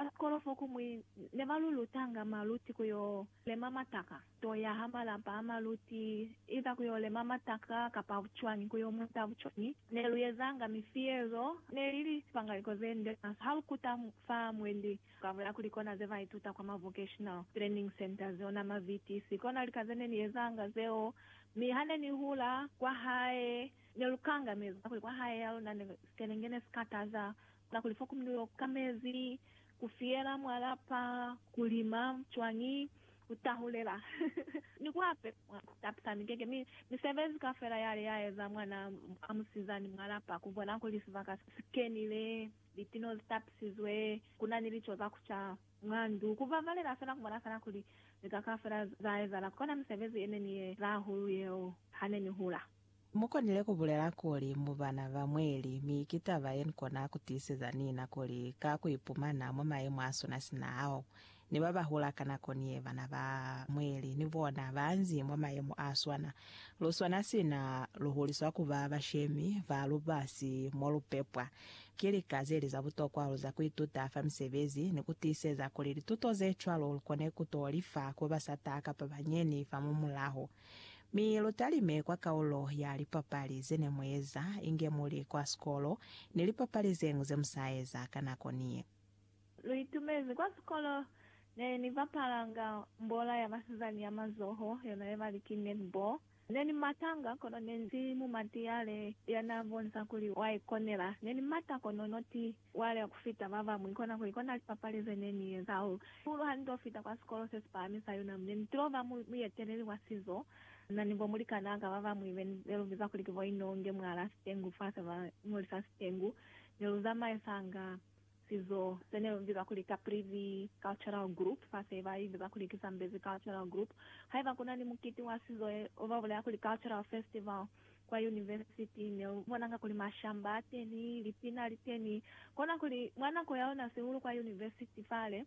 Basikolo fokumwi ne ba lu lutanga maluti ku yo lema mataka, to ya ha malapa a maluti, either ku yo lema mataka kapa bucwañi, ku yo muta bucwañi. Ne lu ezanga mifiyezo, ne li li sipangaliko ze nde maswe ha lu kuta fa mwendi kabuya kuli kona ze ba ituta kwa ma vocational training centres, ona ma VTC. Kona lika ze ne ni ezanga zeo. Mi ha ne ni hula kwa hae, ne lu kangameza kuli kwa hae ya luna ne sikelenge ne si kataza Kakuli fa komunelo ka mezi ku fiyela mwa lapa, ku lima cwañi, ku tahulela, ni ku ape, mwa tapisa mikeke, mi misebezi kafela yale ya eza mwana a musizani mwa lapa, ku bona kuli sibaka si kenile, litino zi tapisizwe, ku na ni lico za ku ca mwa ndu, ku babalela fela, ku bona fela kuli lika kafela za ezahala. Kona misebezi ye ne ni ye za hahulu yeo ha ne ni hula. Mu konile ku bulela kuli mu bana ba mweli, mi ki taba ye ni kona ku tiiseza nina kuli ka ku ipumana mwa mayemo a sona sina ao, ni ba ba hula ka nako ni ye, bana ba mweli ni bona ba nzi mwa mayemo a swana. Lu swana sina lu huliswa ku ba bashemi ba lubasi mo lu pepwa. Ki lika ze li za butokwa hahulu za ku ituta fa misebezi ni ku tiiseza kuli lituto ze cwalo lu kone ku to li fa ku ba sa taha kapa ba nyeni fa mwamulaho. Mi lu talime kwa kaulo ya lipapali ze ne mu eza inge mu li kwa sikolo ni lipapali ze ñwi ze mu sa eza ka nako niye. Lu itumezi kwa sikolo ne ni bapalanga mbola ya basizani ya mazoho, yona ye ba li ki netball. Ne ni matanga, kono ne ni si mumatiyale ya n'a bonisa kuli wa ikonela. Ne ni mata kono noti Wale ku fita ba bañwi kona kuli kona lipapali ze ne ni eza. U pulu ha ni to fita kwa sikolo se si pahami sa UNAM, ne ni tilo ba mueteleli wa sizo na ni bo mulikanaa ka ba bañwi be ne lu biza kuli ki bo Inonge mwalaa Sitengu fa se ba ñoli sa Sitengu. Ne lu zamaisanga sizo se ne lu biza kuli Caprivi Cultural Group fa se ba ibiza kuli ki Zambezi Cultural Group. Haiba ku na ni mukiti wa sizo, ba bulela kuli Cultural Festival, Kwa yunivesiti ne u bonanga kuli mashamba a teni, lipina li teni. Kona kuli, mwa nako ya ona sihulu kwa yunivesiti fale,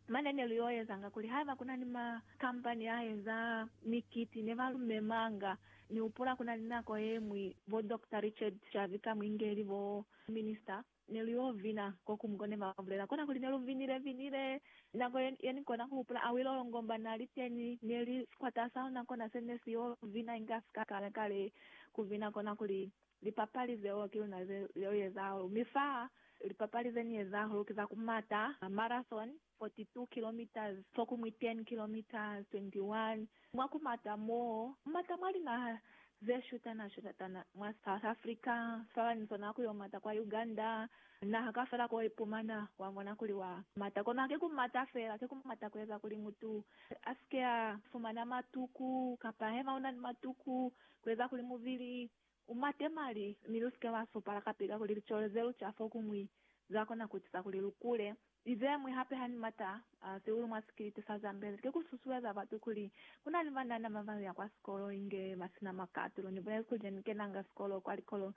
mane ne lu y'o ezanga kuli haiba ku na ni makampani a eza mikiti ne ba lu memanga. Ni hupula ku na ni nako ye ñwi bo Dokta Richard Chavika Mwingeli, bo Minista Ne lu yo vina ko ku mukwa, ne ba bulela. Kona kuli ne lu vinile, vinile. Nako ye, ye ni kona ku hupula, a wile olongomba, na li teni, ne li sikwata sa ona, kona se ne si yo vina inge a si ka kala kale ku vina. Kona kuli, Lipapali zeo ki luna ze, zeo ye za hahulu. Mi fa, lipapali ze ni ye za hahulu ki za ku mata, marathon, 42 kilometres fo ku mwi 10 kilometres 21 mwa ku mata mo mata mwa linaha ze shutana shutatana mwa South Africa sibaba ni zona ku yo mata kwa Uganda naha kafela ko ipumana wa ngona kuli wa mata kono haki ku mata fela ki ku mata ku eza kuli mutu asike a fumana matuku kapa hema una ni matuku ku eza kuli mubili U mate mali, mi lu si ke lwa supala kape kakuli licole ze lu ca fokumwi za kona ku etiza kuli lu kule. Ni ze ñwi hape ha ni mata sihulu mwa sikiliti sa Zambezi ki ku susueza batu kuli ku na ni banana ba ba ya kwa sikolo inge ba si na makatulo. Ni bulezi kuli ne ni kenanga sikolo kwa likolo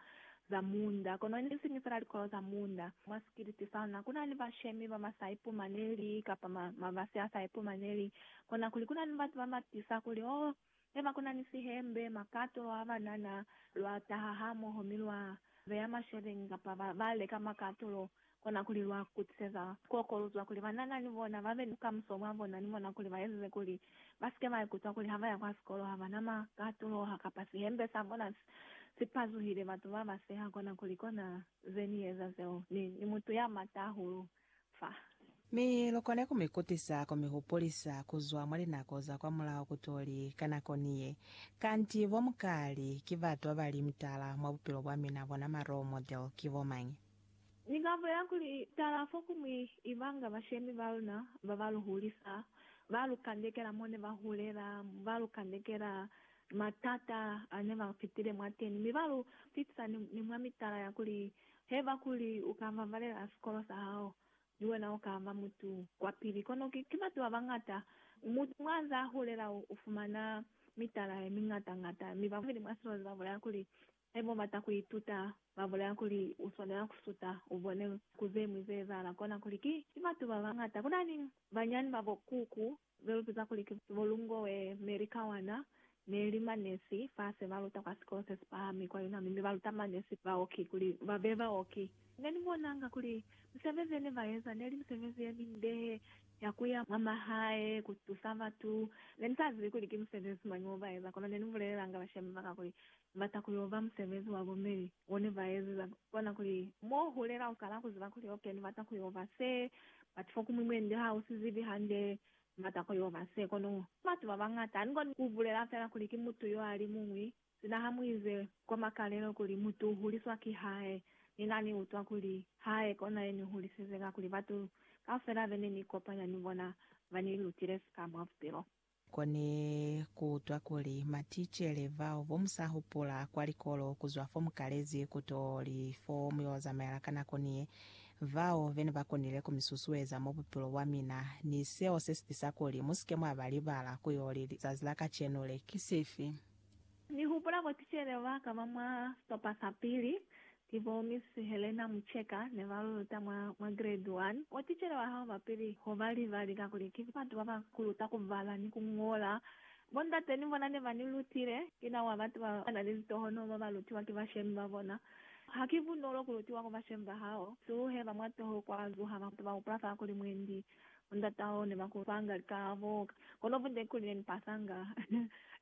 za munda, kono ne si ni fela likolo za munda. Mwa sikiliti sa luna ku na ni bashemi ba ba sa ipumaneli kapa mabasi a sa ipumaneli, kona kuli ku na ni batu ba ba tiisa kuli, Oh, Ne ba kuna ni sihembe, makato, lwa banana, lwa taha hamoho mi lwa beya mashebeñi kapa ba, ba leka makato lo, kona kuli lwa kutiseza kuokoluzwa kuli banana ni bona ba be ni bukamuso bwa bona ni bona kuli ba ezize kuli ba sike ba ikutwa kuli ha ba ya kwa sikolo ha ba na makato lo ha kapa sihembe sa bona si, si pazuhile. Batu ba ba seha kona kuli, Kona ze ni eza zeo, ni, ni mutu ya mata hahulu. fa. Mi lu kone ku mi kutisa ku mi hupulisa ku zwa mwa linako za kwamulaho kutoli ka nako ni ye. Kanti bo mukali ki batu ba ba li mutala mwa bupilo bwa mina, bona ma role model ki bo mañi? Ni ka bulela kuli, tala fo ku mwi ibanga bashemi ba luna ba ba lu hulisa, ba lu kandekela mo ne ba hulela, ba lu kandekela matata a ne ba pitile mwateni, mi ba lu pitisa ni mwa mitala ya kuli Haiba kuli u ka mamalela sikolo sa hao, ni wena u ka ba mutu kwa pili. Kono ki, ki batu ba bañata. Mutu mwa za hulela u, u fumana mitala ye miñata-ñata, mi babeli mwa silozi ba bulela kuli, Haiba u bata ku ituta, ba bulela kuli, u swanela ku suta, u bone ku ze ñwi ze ezahala. Kona kuli, ki, ki batu ba bañata. Kuna ni banyani ba bo kuku Ze lu biza kuli ki bo Lungoe Mary Kawana ne li manesi fa se ba luta kwa sikolo se si pahami kwa Yunami mi ba luta manesi baoki kuli ba be baoki. Ne ni bonanga kuli misebezi ye ne ba eza ne li misebezi ye minde ya ku ya mwa mahae ku tusa batu. Ne ni sa zibi kuli ki musebezi mañi o ba eza, kono ne ni bulelelanga bashemi ba ka kuli Bata kuli uba musebezi wa bo Mary one baezeza kona kuli mo hulela ukala kuziba kuli ok ni bata kuyo ba se but fokumwi mwende ha usi zibi hande ni bata kuyo ba se kono batu ba bangata ani koni ku bulela fela kuli ki mutu yo ali muñwi sina ha mu ize kwa makalelo kuli mutu u huliswa ki hae ni na ni utwa kuli hae kona ye ni hulisize kakuli batu kaufela bene ni kopanya ni bona ba ni lutile sika mwa bupilo Kone kuutwa kuli maticele bao bomusahupula kwa likolo kuzwa fomukalezi kuto li fo muyozamaela ka nako niye, bao vene bakonile kumisusueza mwa bupilo bwamina, ni seo sesitisa kuli musike mwaba libala kuyo li lizazi la kacenu le. Ki sifi? Nihupula boticele baka ba mwa sitopa sapili, Ki bo Miss Helena Mucheka ne ba lu luta mwa, mwa grade one. Mwa ticele wa hao ba pili ho ba li, ba lika kuli, Ki batu ba ba ku luta ku bala ni ku ñola. Bo ndate ni bona ne ba ni lutile. Ki na wa batu ba ba na ni litohonoho ba ba lutiwa ki bashemi ba bona. Ha ki bunolo ku lutiwa ku bashemi ba hao. Suluhe ba mwa toho kwa zuha batu ba hupula fa kuli mwendi bo ndata hao ne ba ku fanga likaabo. Kono bunde kuli ne ni pasanga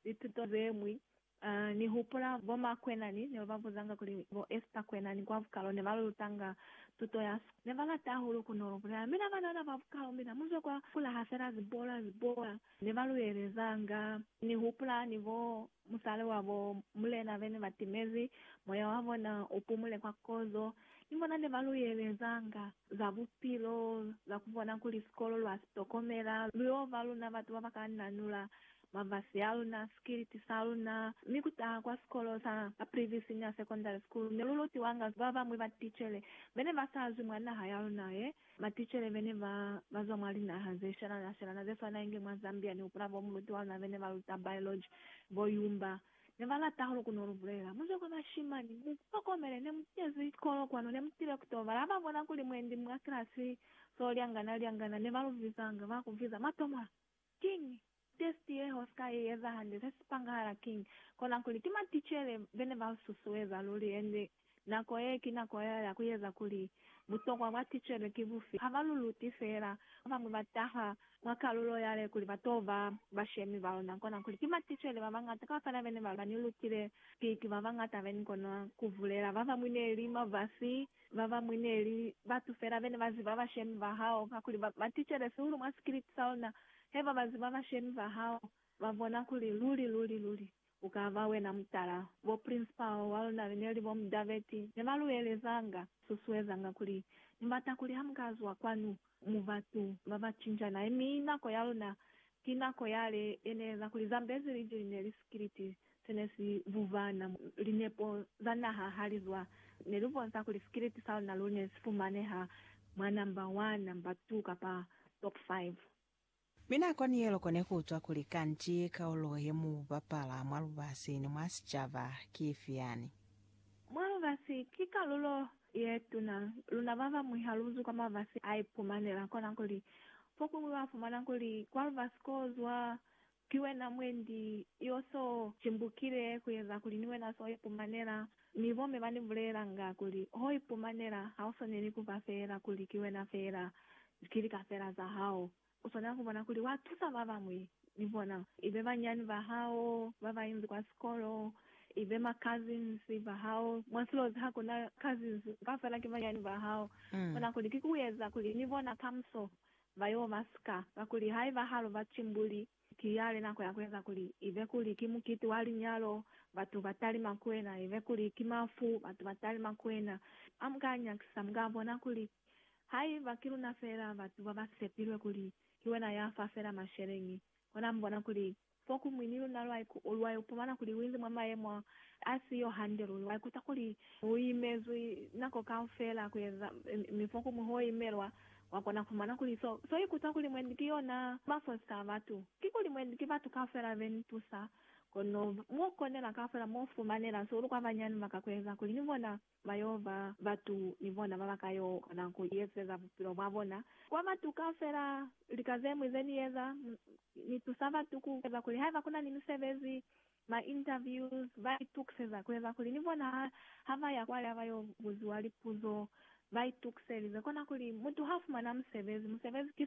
lituto ze ñwi Ha ni hupula bo ma kwenani ne ba ba buzanga kuli bo Esther kwenani kwa bukalo ne ba lu lutanga tuto ya sikolo. Ne ba lata hahulu ku no lu bulela. Mina banana ba bukalo, mina mu zwe kwa kula ha fela zibola, zibola ne ba lu elezanga. Ni hupula ni bo musali wa bo mulena be ne ba timezi, moya wa bona u pumule kwa kozo, ni bona ne ba lu elezanga. za bupilo za ku bona kuli sikolo lwa si tokomela lu yo ba luna batu ba ba ka nanula mavasi a luna, sikiliti sa luna, mi ku taha kwa sikolo sa Caprivi Senior Secondary School ne lu lutiwanga ba bañwi ba ticele be ne ba sa zwi mwa naha ya luna ye, maticele be ne ba ba zwa mwa linaha ze shelana-shelana ze swana inge mwa Zambia ni hupula bo muluti wa luna be ne ba luta biology, bo Yumba Ne ba lata hahulu ku no lu bulela. Mu zwe kwa bashimani. Mu tokomele, ne mu kezi kolo kwanu, ne mu tile ku to bala. Ha ba bona kuli mwendi mwa kilasi so lyangana lyangana, ne ba lu vizanga, ba ku viza, Matomwa! Kiñi? Testi ye ho si ka i eza hande, se si pangahala kiñi? Kona kuli, ki maticele be ne ba lu susueza luli, ende Nako ye ki nako ya ya ku eza kuli butokwa bwa ticelo ki bufi. Ha ba lu luti feela, ba bañwi ba taha mwa kalulo ya le kuli ba t'o ba bashemi ba luna, kona kuli ki maticelo ba bañata ka fapana be ne ba ni lutile ki, ki ba bañata be ni kona ku bulela. Ba bañwi ne li mavasi, ba bañwi ne li batu feela be ne ba ziba bashemi ba hao, kakuli ba ba ticele sihulu mwa sikiliti sa luna. Haiba ba ziba bashemi ba hao, ba bona kuli luli, luli, luli, Ku ka ba wena mutala. Bo principal wa luna be ne li bo Mdaveti ne ba lu elezanga, susuezanga kuli, Ni bata kuli ha mu ka zwa kwanu, mu batu ba ba cinjanahe, mi nako ya luna ki nako yale ye ne eza kuli Zambezi liji li ne li sikiliti se ne si vuvana. Linepo za naha ha li zwa, ne lu bonsa kuli sikiliti sa luna lu ne si fumaneha mwa number one, number two, kapa top five. Mi nako ni ye loko ne ku utwa kuli, Kanti kaulo ye mu bapala mwa lubasi ni mwa sicaba ki ifi yani? Mwa lubasi ki kalulo ye tuna. Luna ba bañwi ha lu zwi kwa mabasi a ipumanela, kona kuli, fokuñwi wa fumana kuli kwa lubasi ko zwa ki wena mwendi yo so cimbukile ku eza kuli ni wena so ipumanela Mi bomme ba ni bulelanga kuli, Ho ipumanela, ha u swaneli ku ba feela kuli ki wena feela, ki lika feela za hao. U swanela ku bona kuli wa tusa ba bañwi, ni bona, ibe banyani ba hao ba ba inzi kwa sikolo, ibe ma cousins ba hao, mwa silozi ha ku na cousins, kaufela ki banyani ba hao. Bona kuli ki ku eza kuli ni bona kamuso ba yo ba sika, kakuli haiba ha lu ba timbuli, Ki yale nako ya kueza kuli ibe kuli ki mukiti wa linyalo, batu ba talima ku wena, ibe kuli ki mafu, batu ba talima ku wena. Ha mu ka nyakisa, mu ka bona kuli haiba ki luna feela batu ba ba sepilwe kuli ki wena ya fa feela masheleñi, kona mu bona kuli fokumwi ni luna lwa ipumana kuli lu inzi mwa mayemo a si yo hande luli, lwa ikuta kuli lu imezwi nako kaufeela kueza, mi fokumwi ho imelwa Wa kona kumona kuli so, so ikuta kuli mwendi ki yona masosi ka batu, kikuli mwendi ki batu kaufela be ni tusa, kono mo konela kaufela mo fumanela so lu kwa banyani ba ka kueza kuli ni bona ba yo ba batu ni bona ba ba ka yo kona ku iezeza bupilo bwa bona kwa batu kaufela. Lika zemwi ze ni eza, Ni tusa batu ku eza kuli haiba ku na ni misebezi Ba interviews ba itukiseza kueza kuli ni bona ha ba ya kwale ha ba yo buziwa lipuzo ba itukiselize. Kona kuli mutu ha fumana musebezi, musebezi ki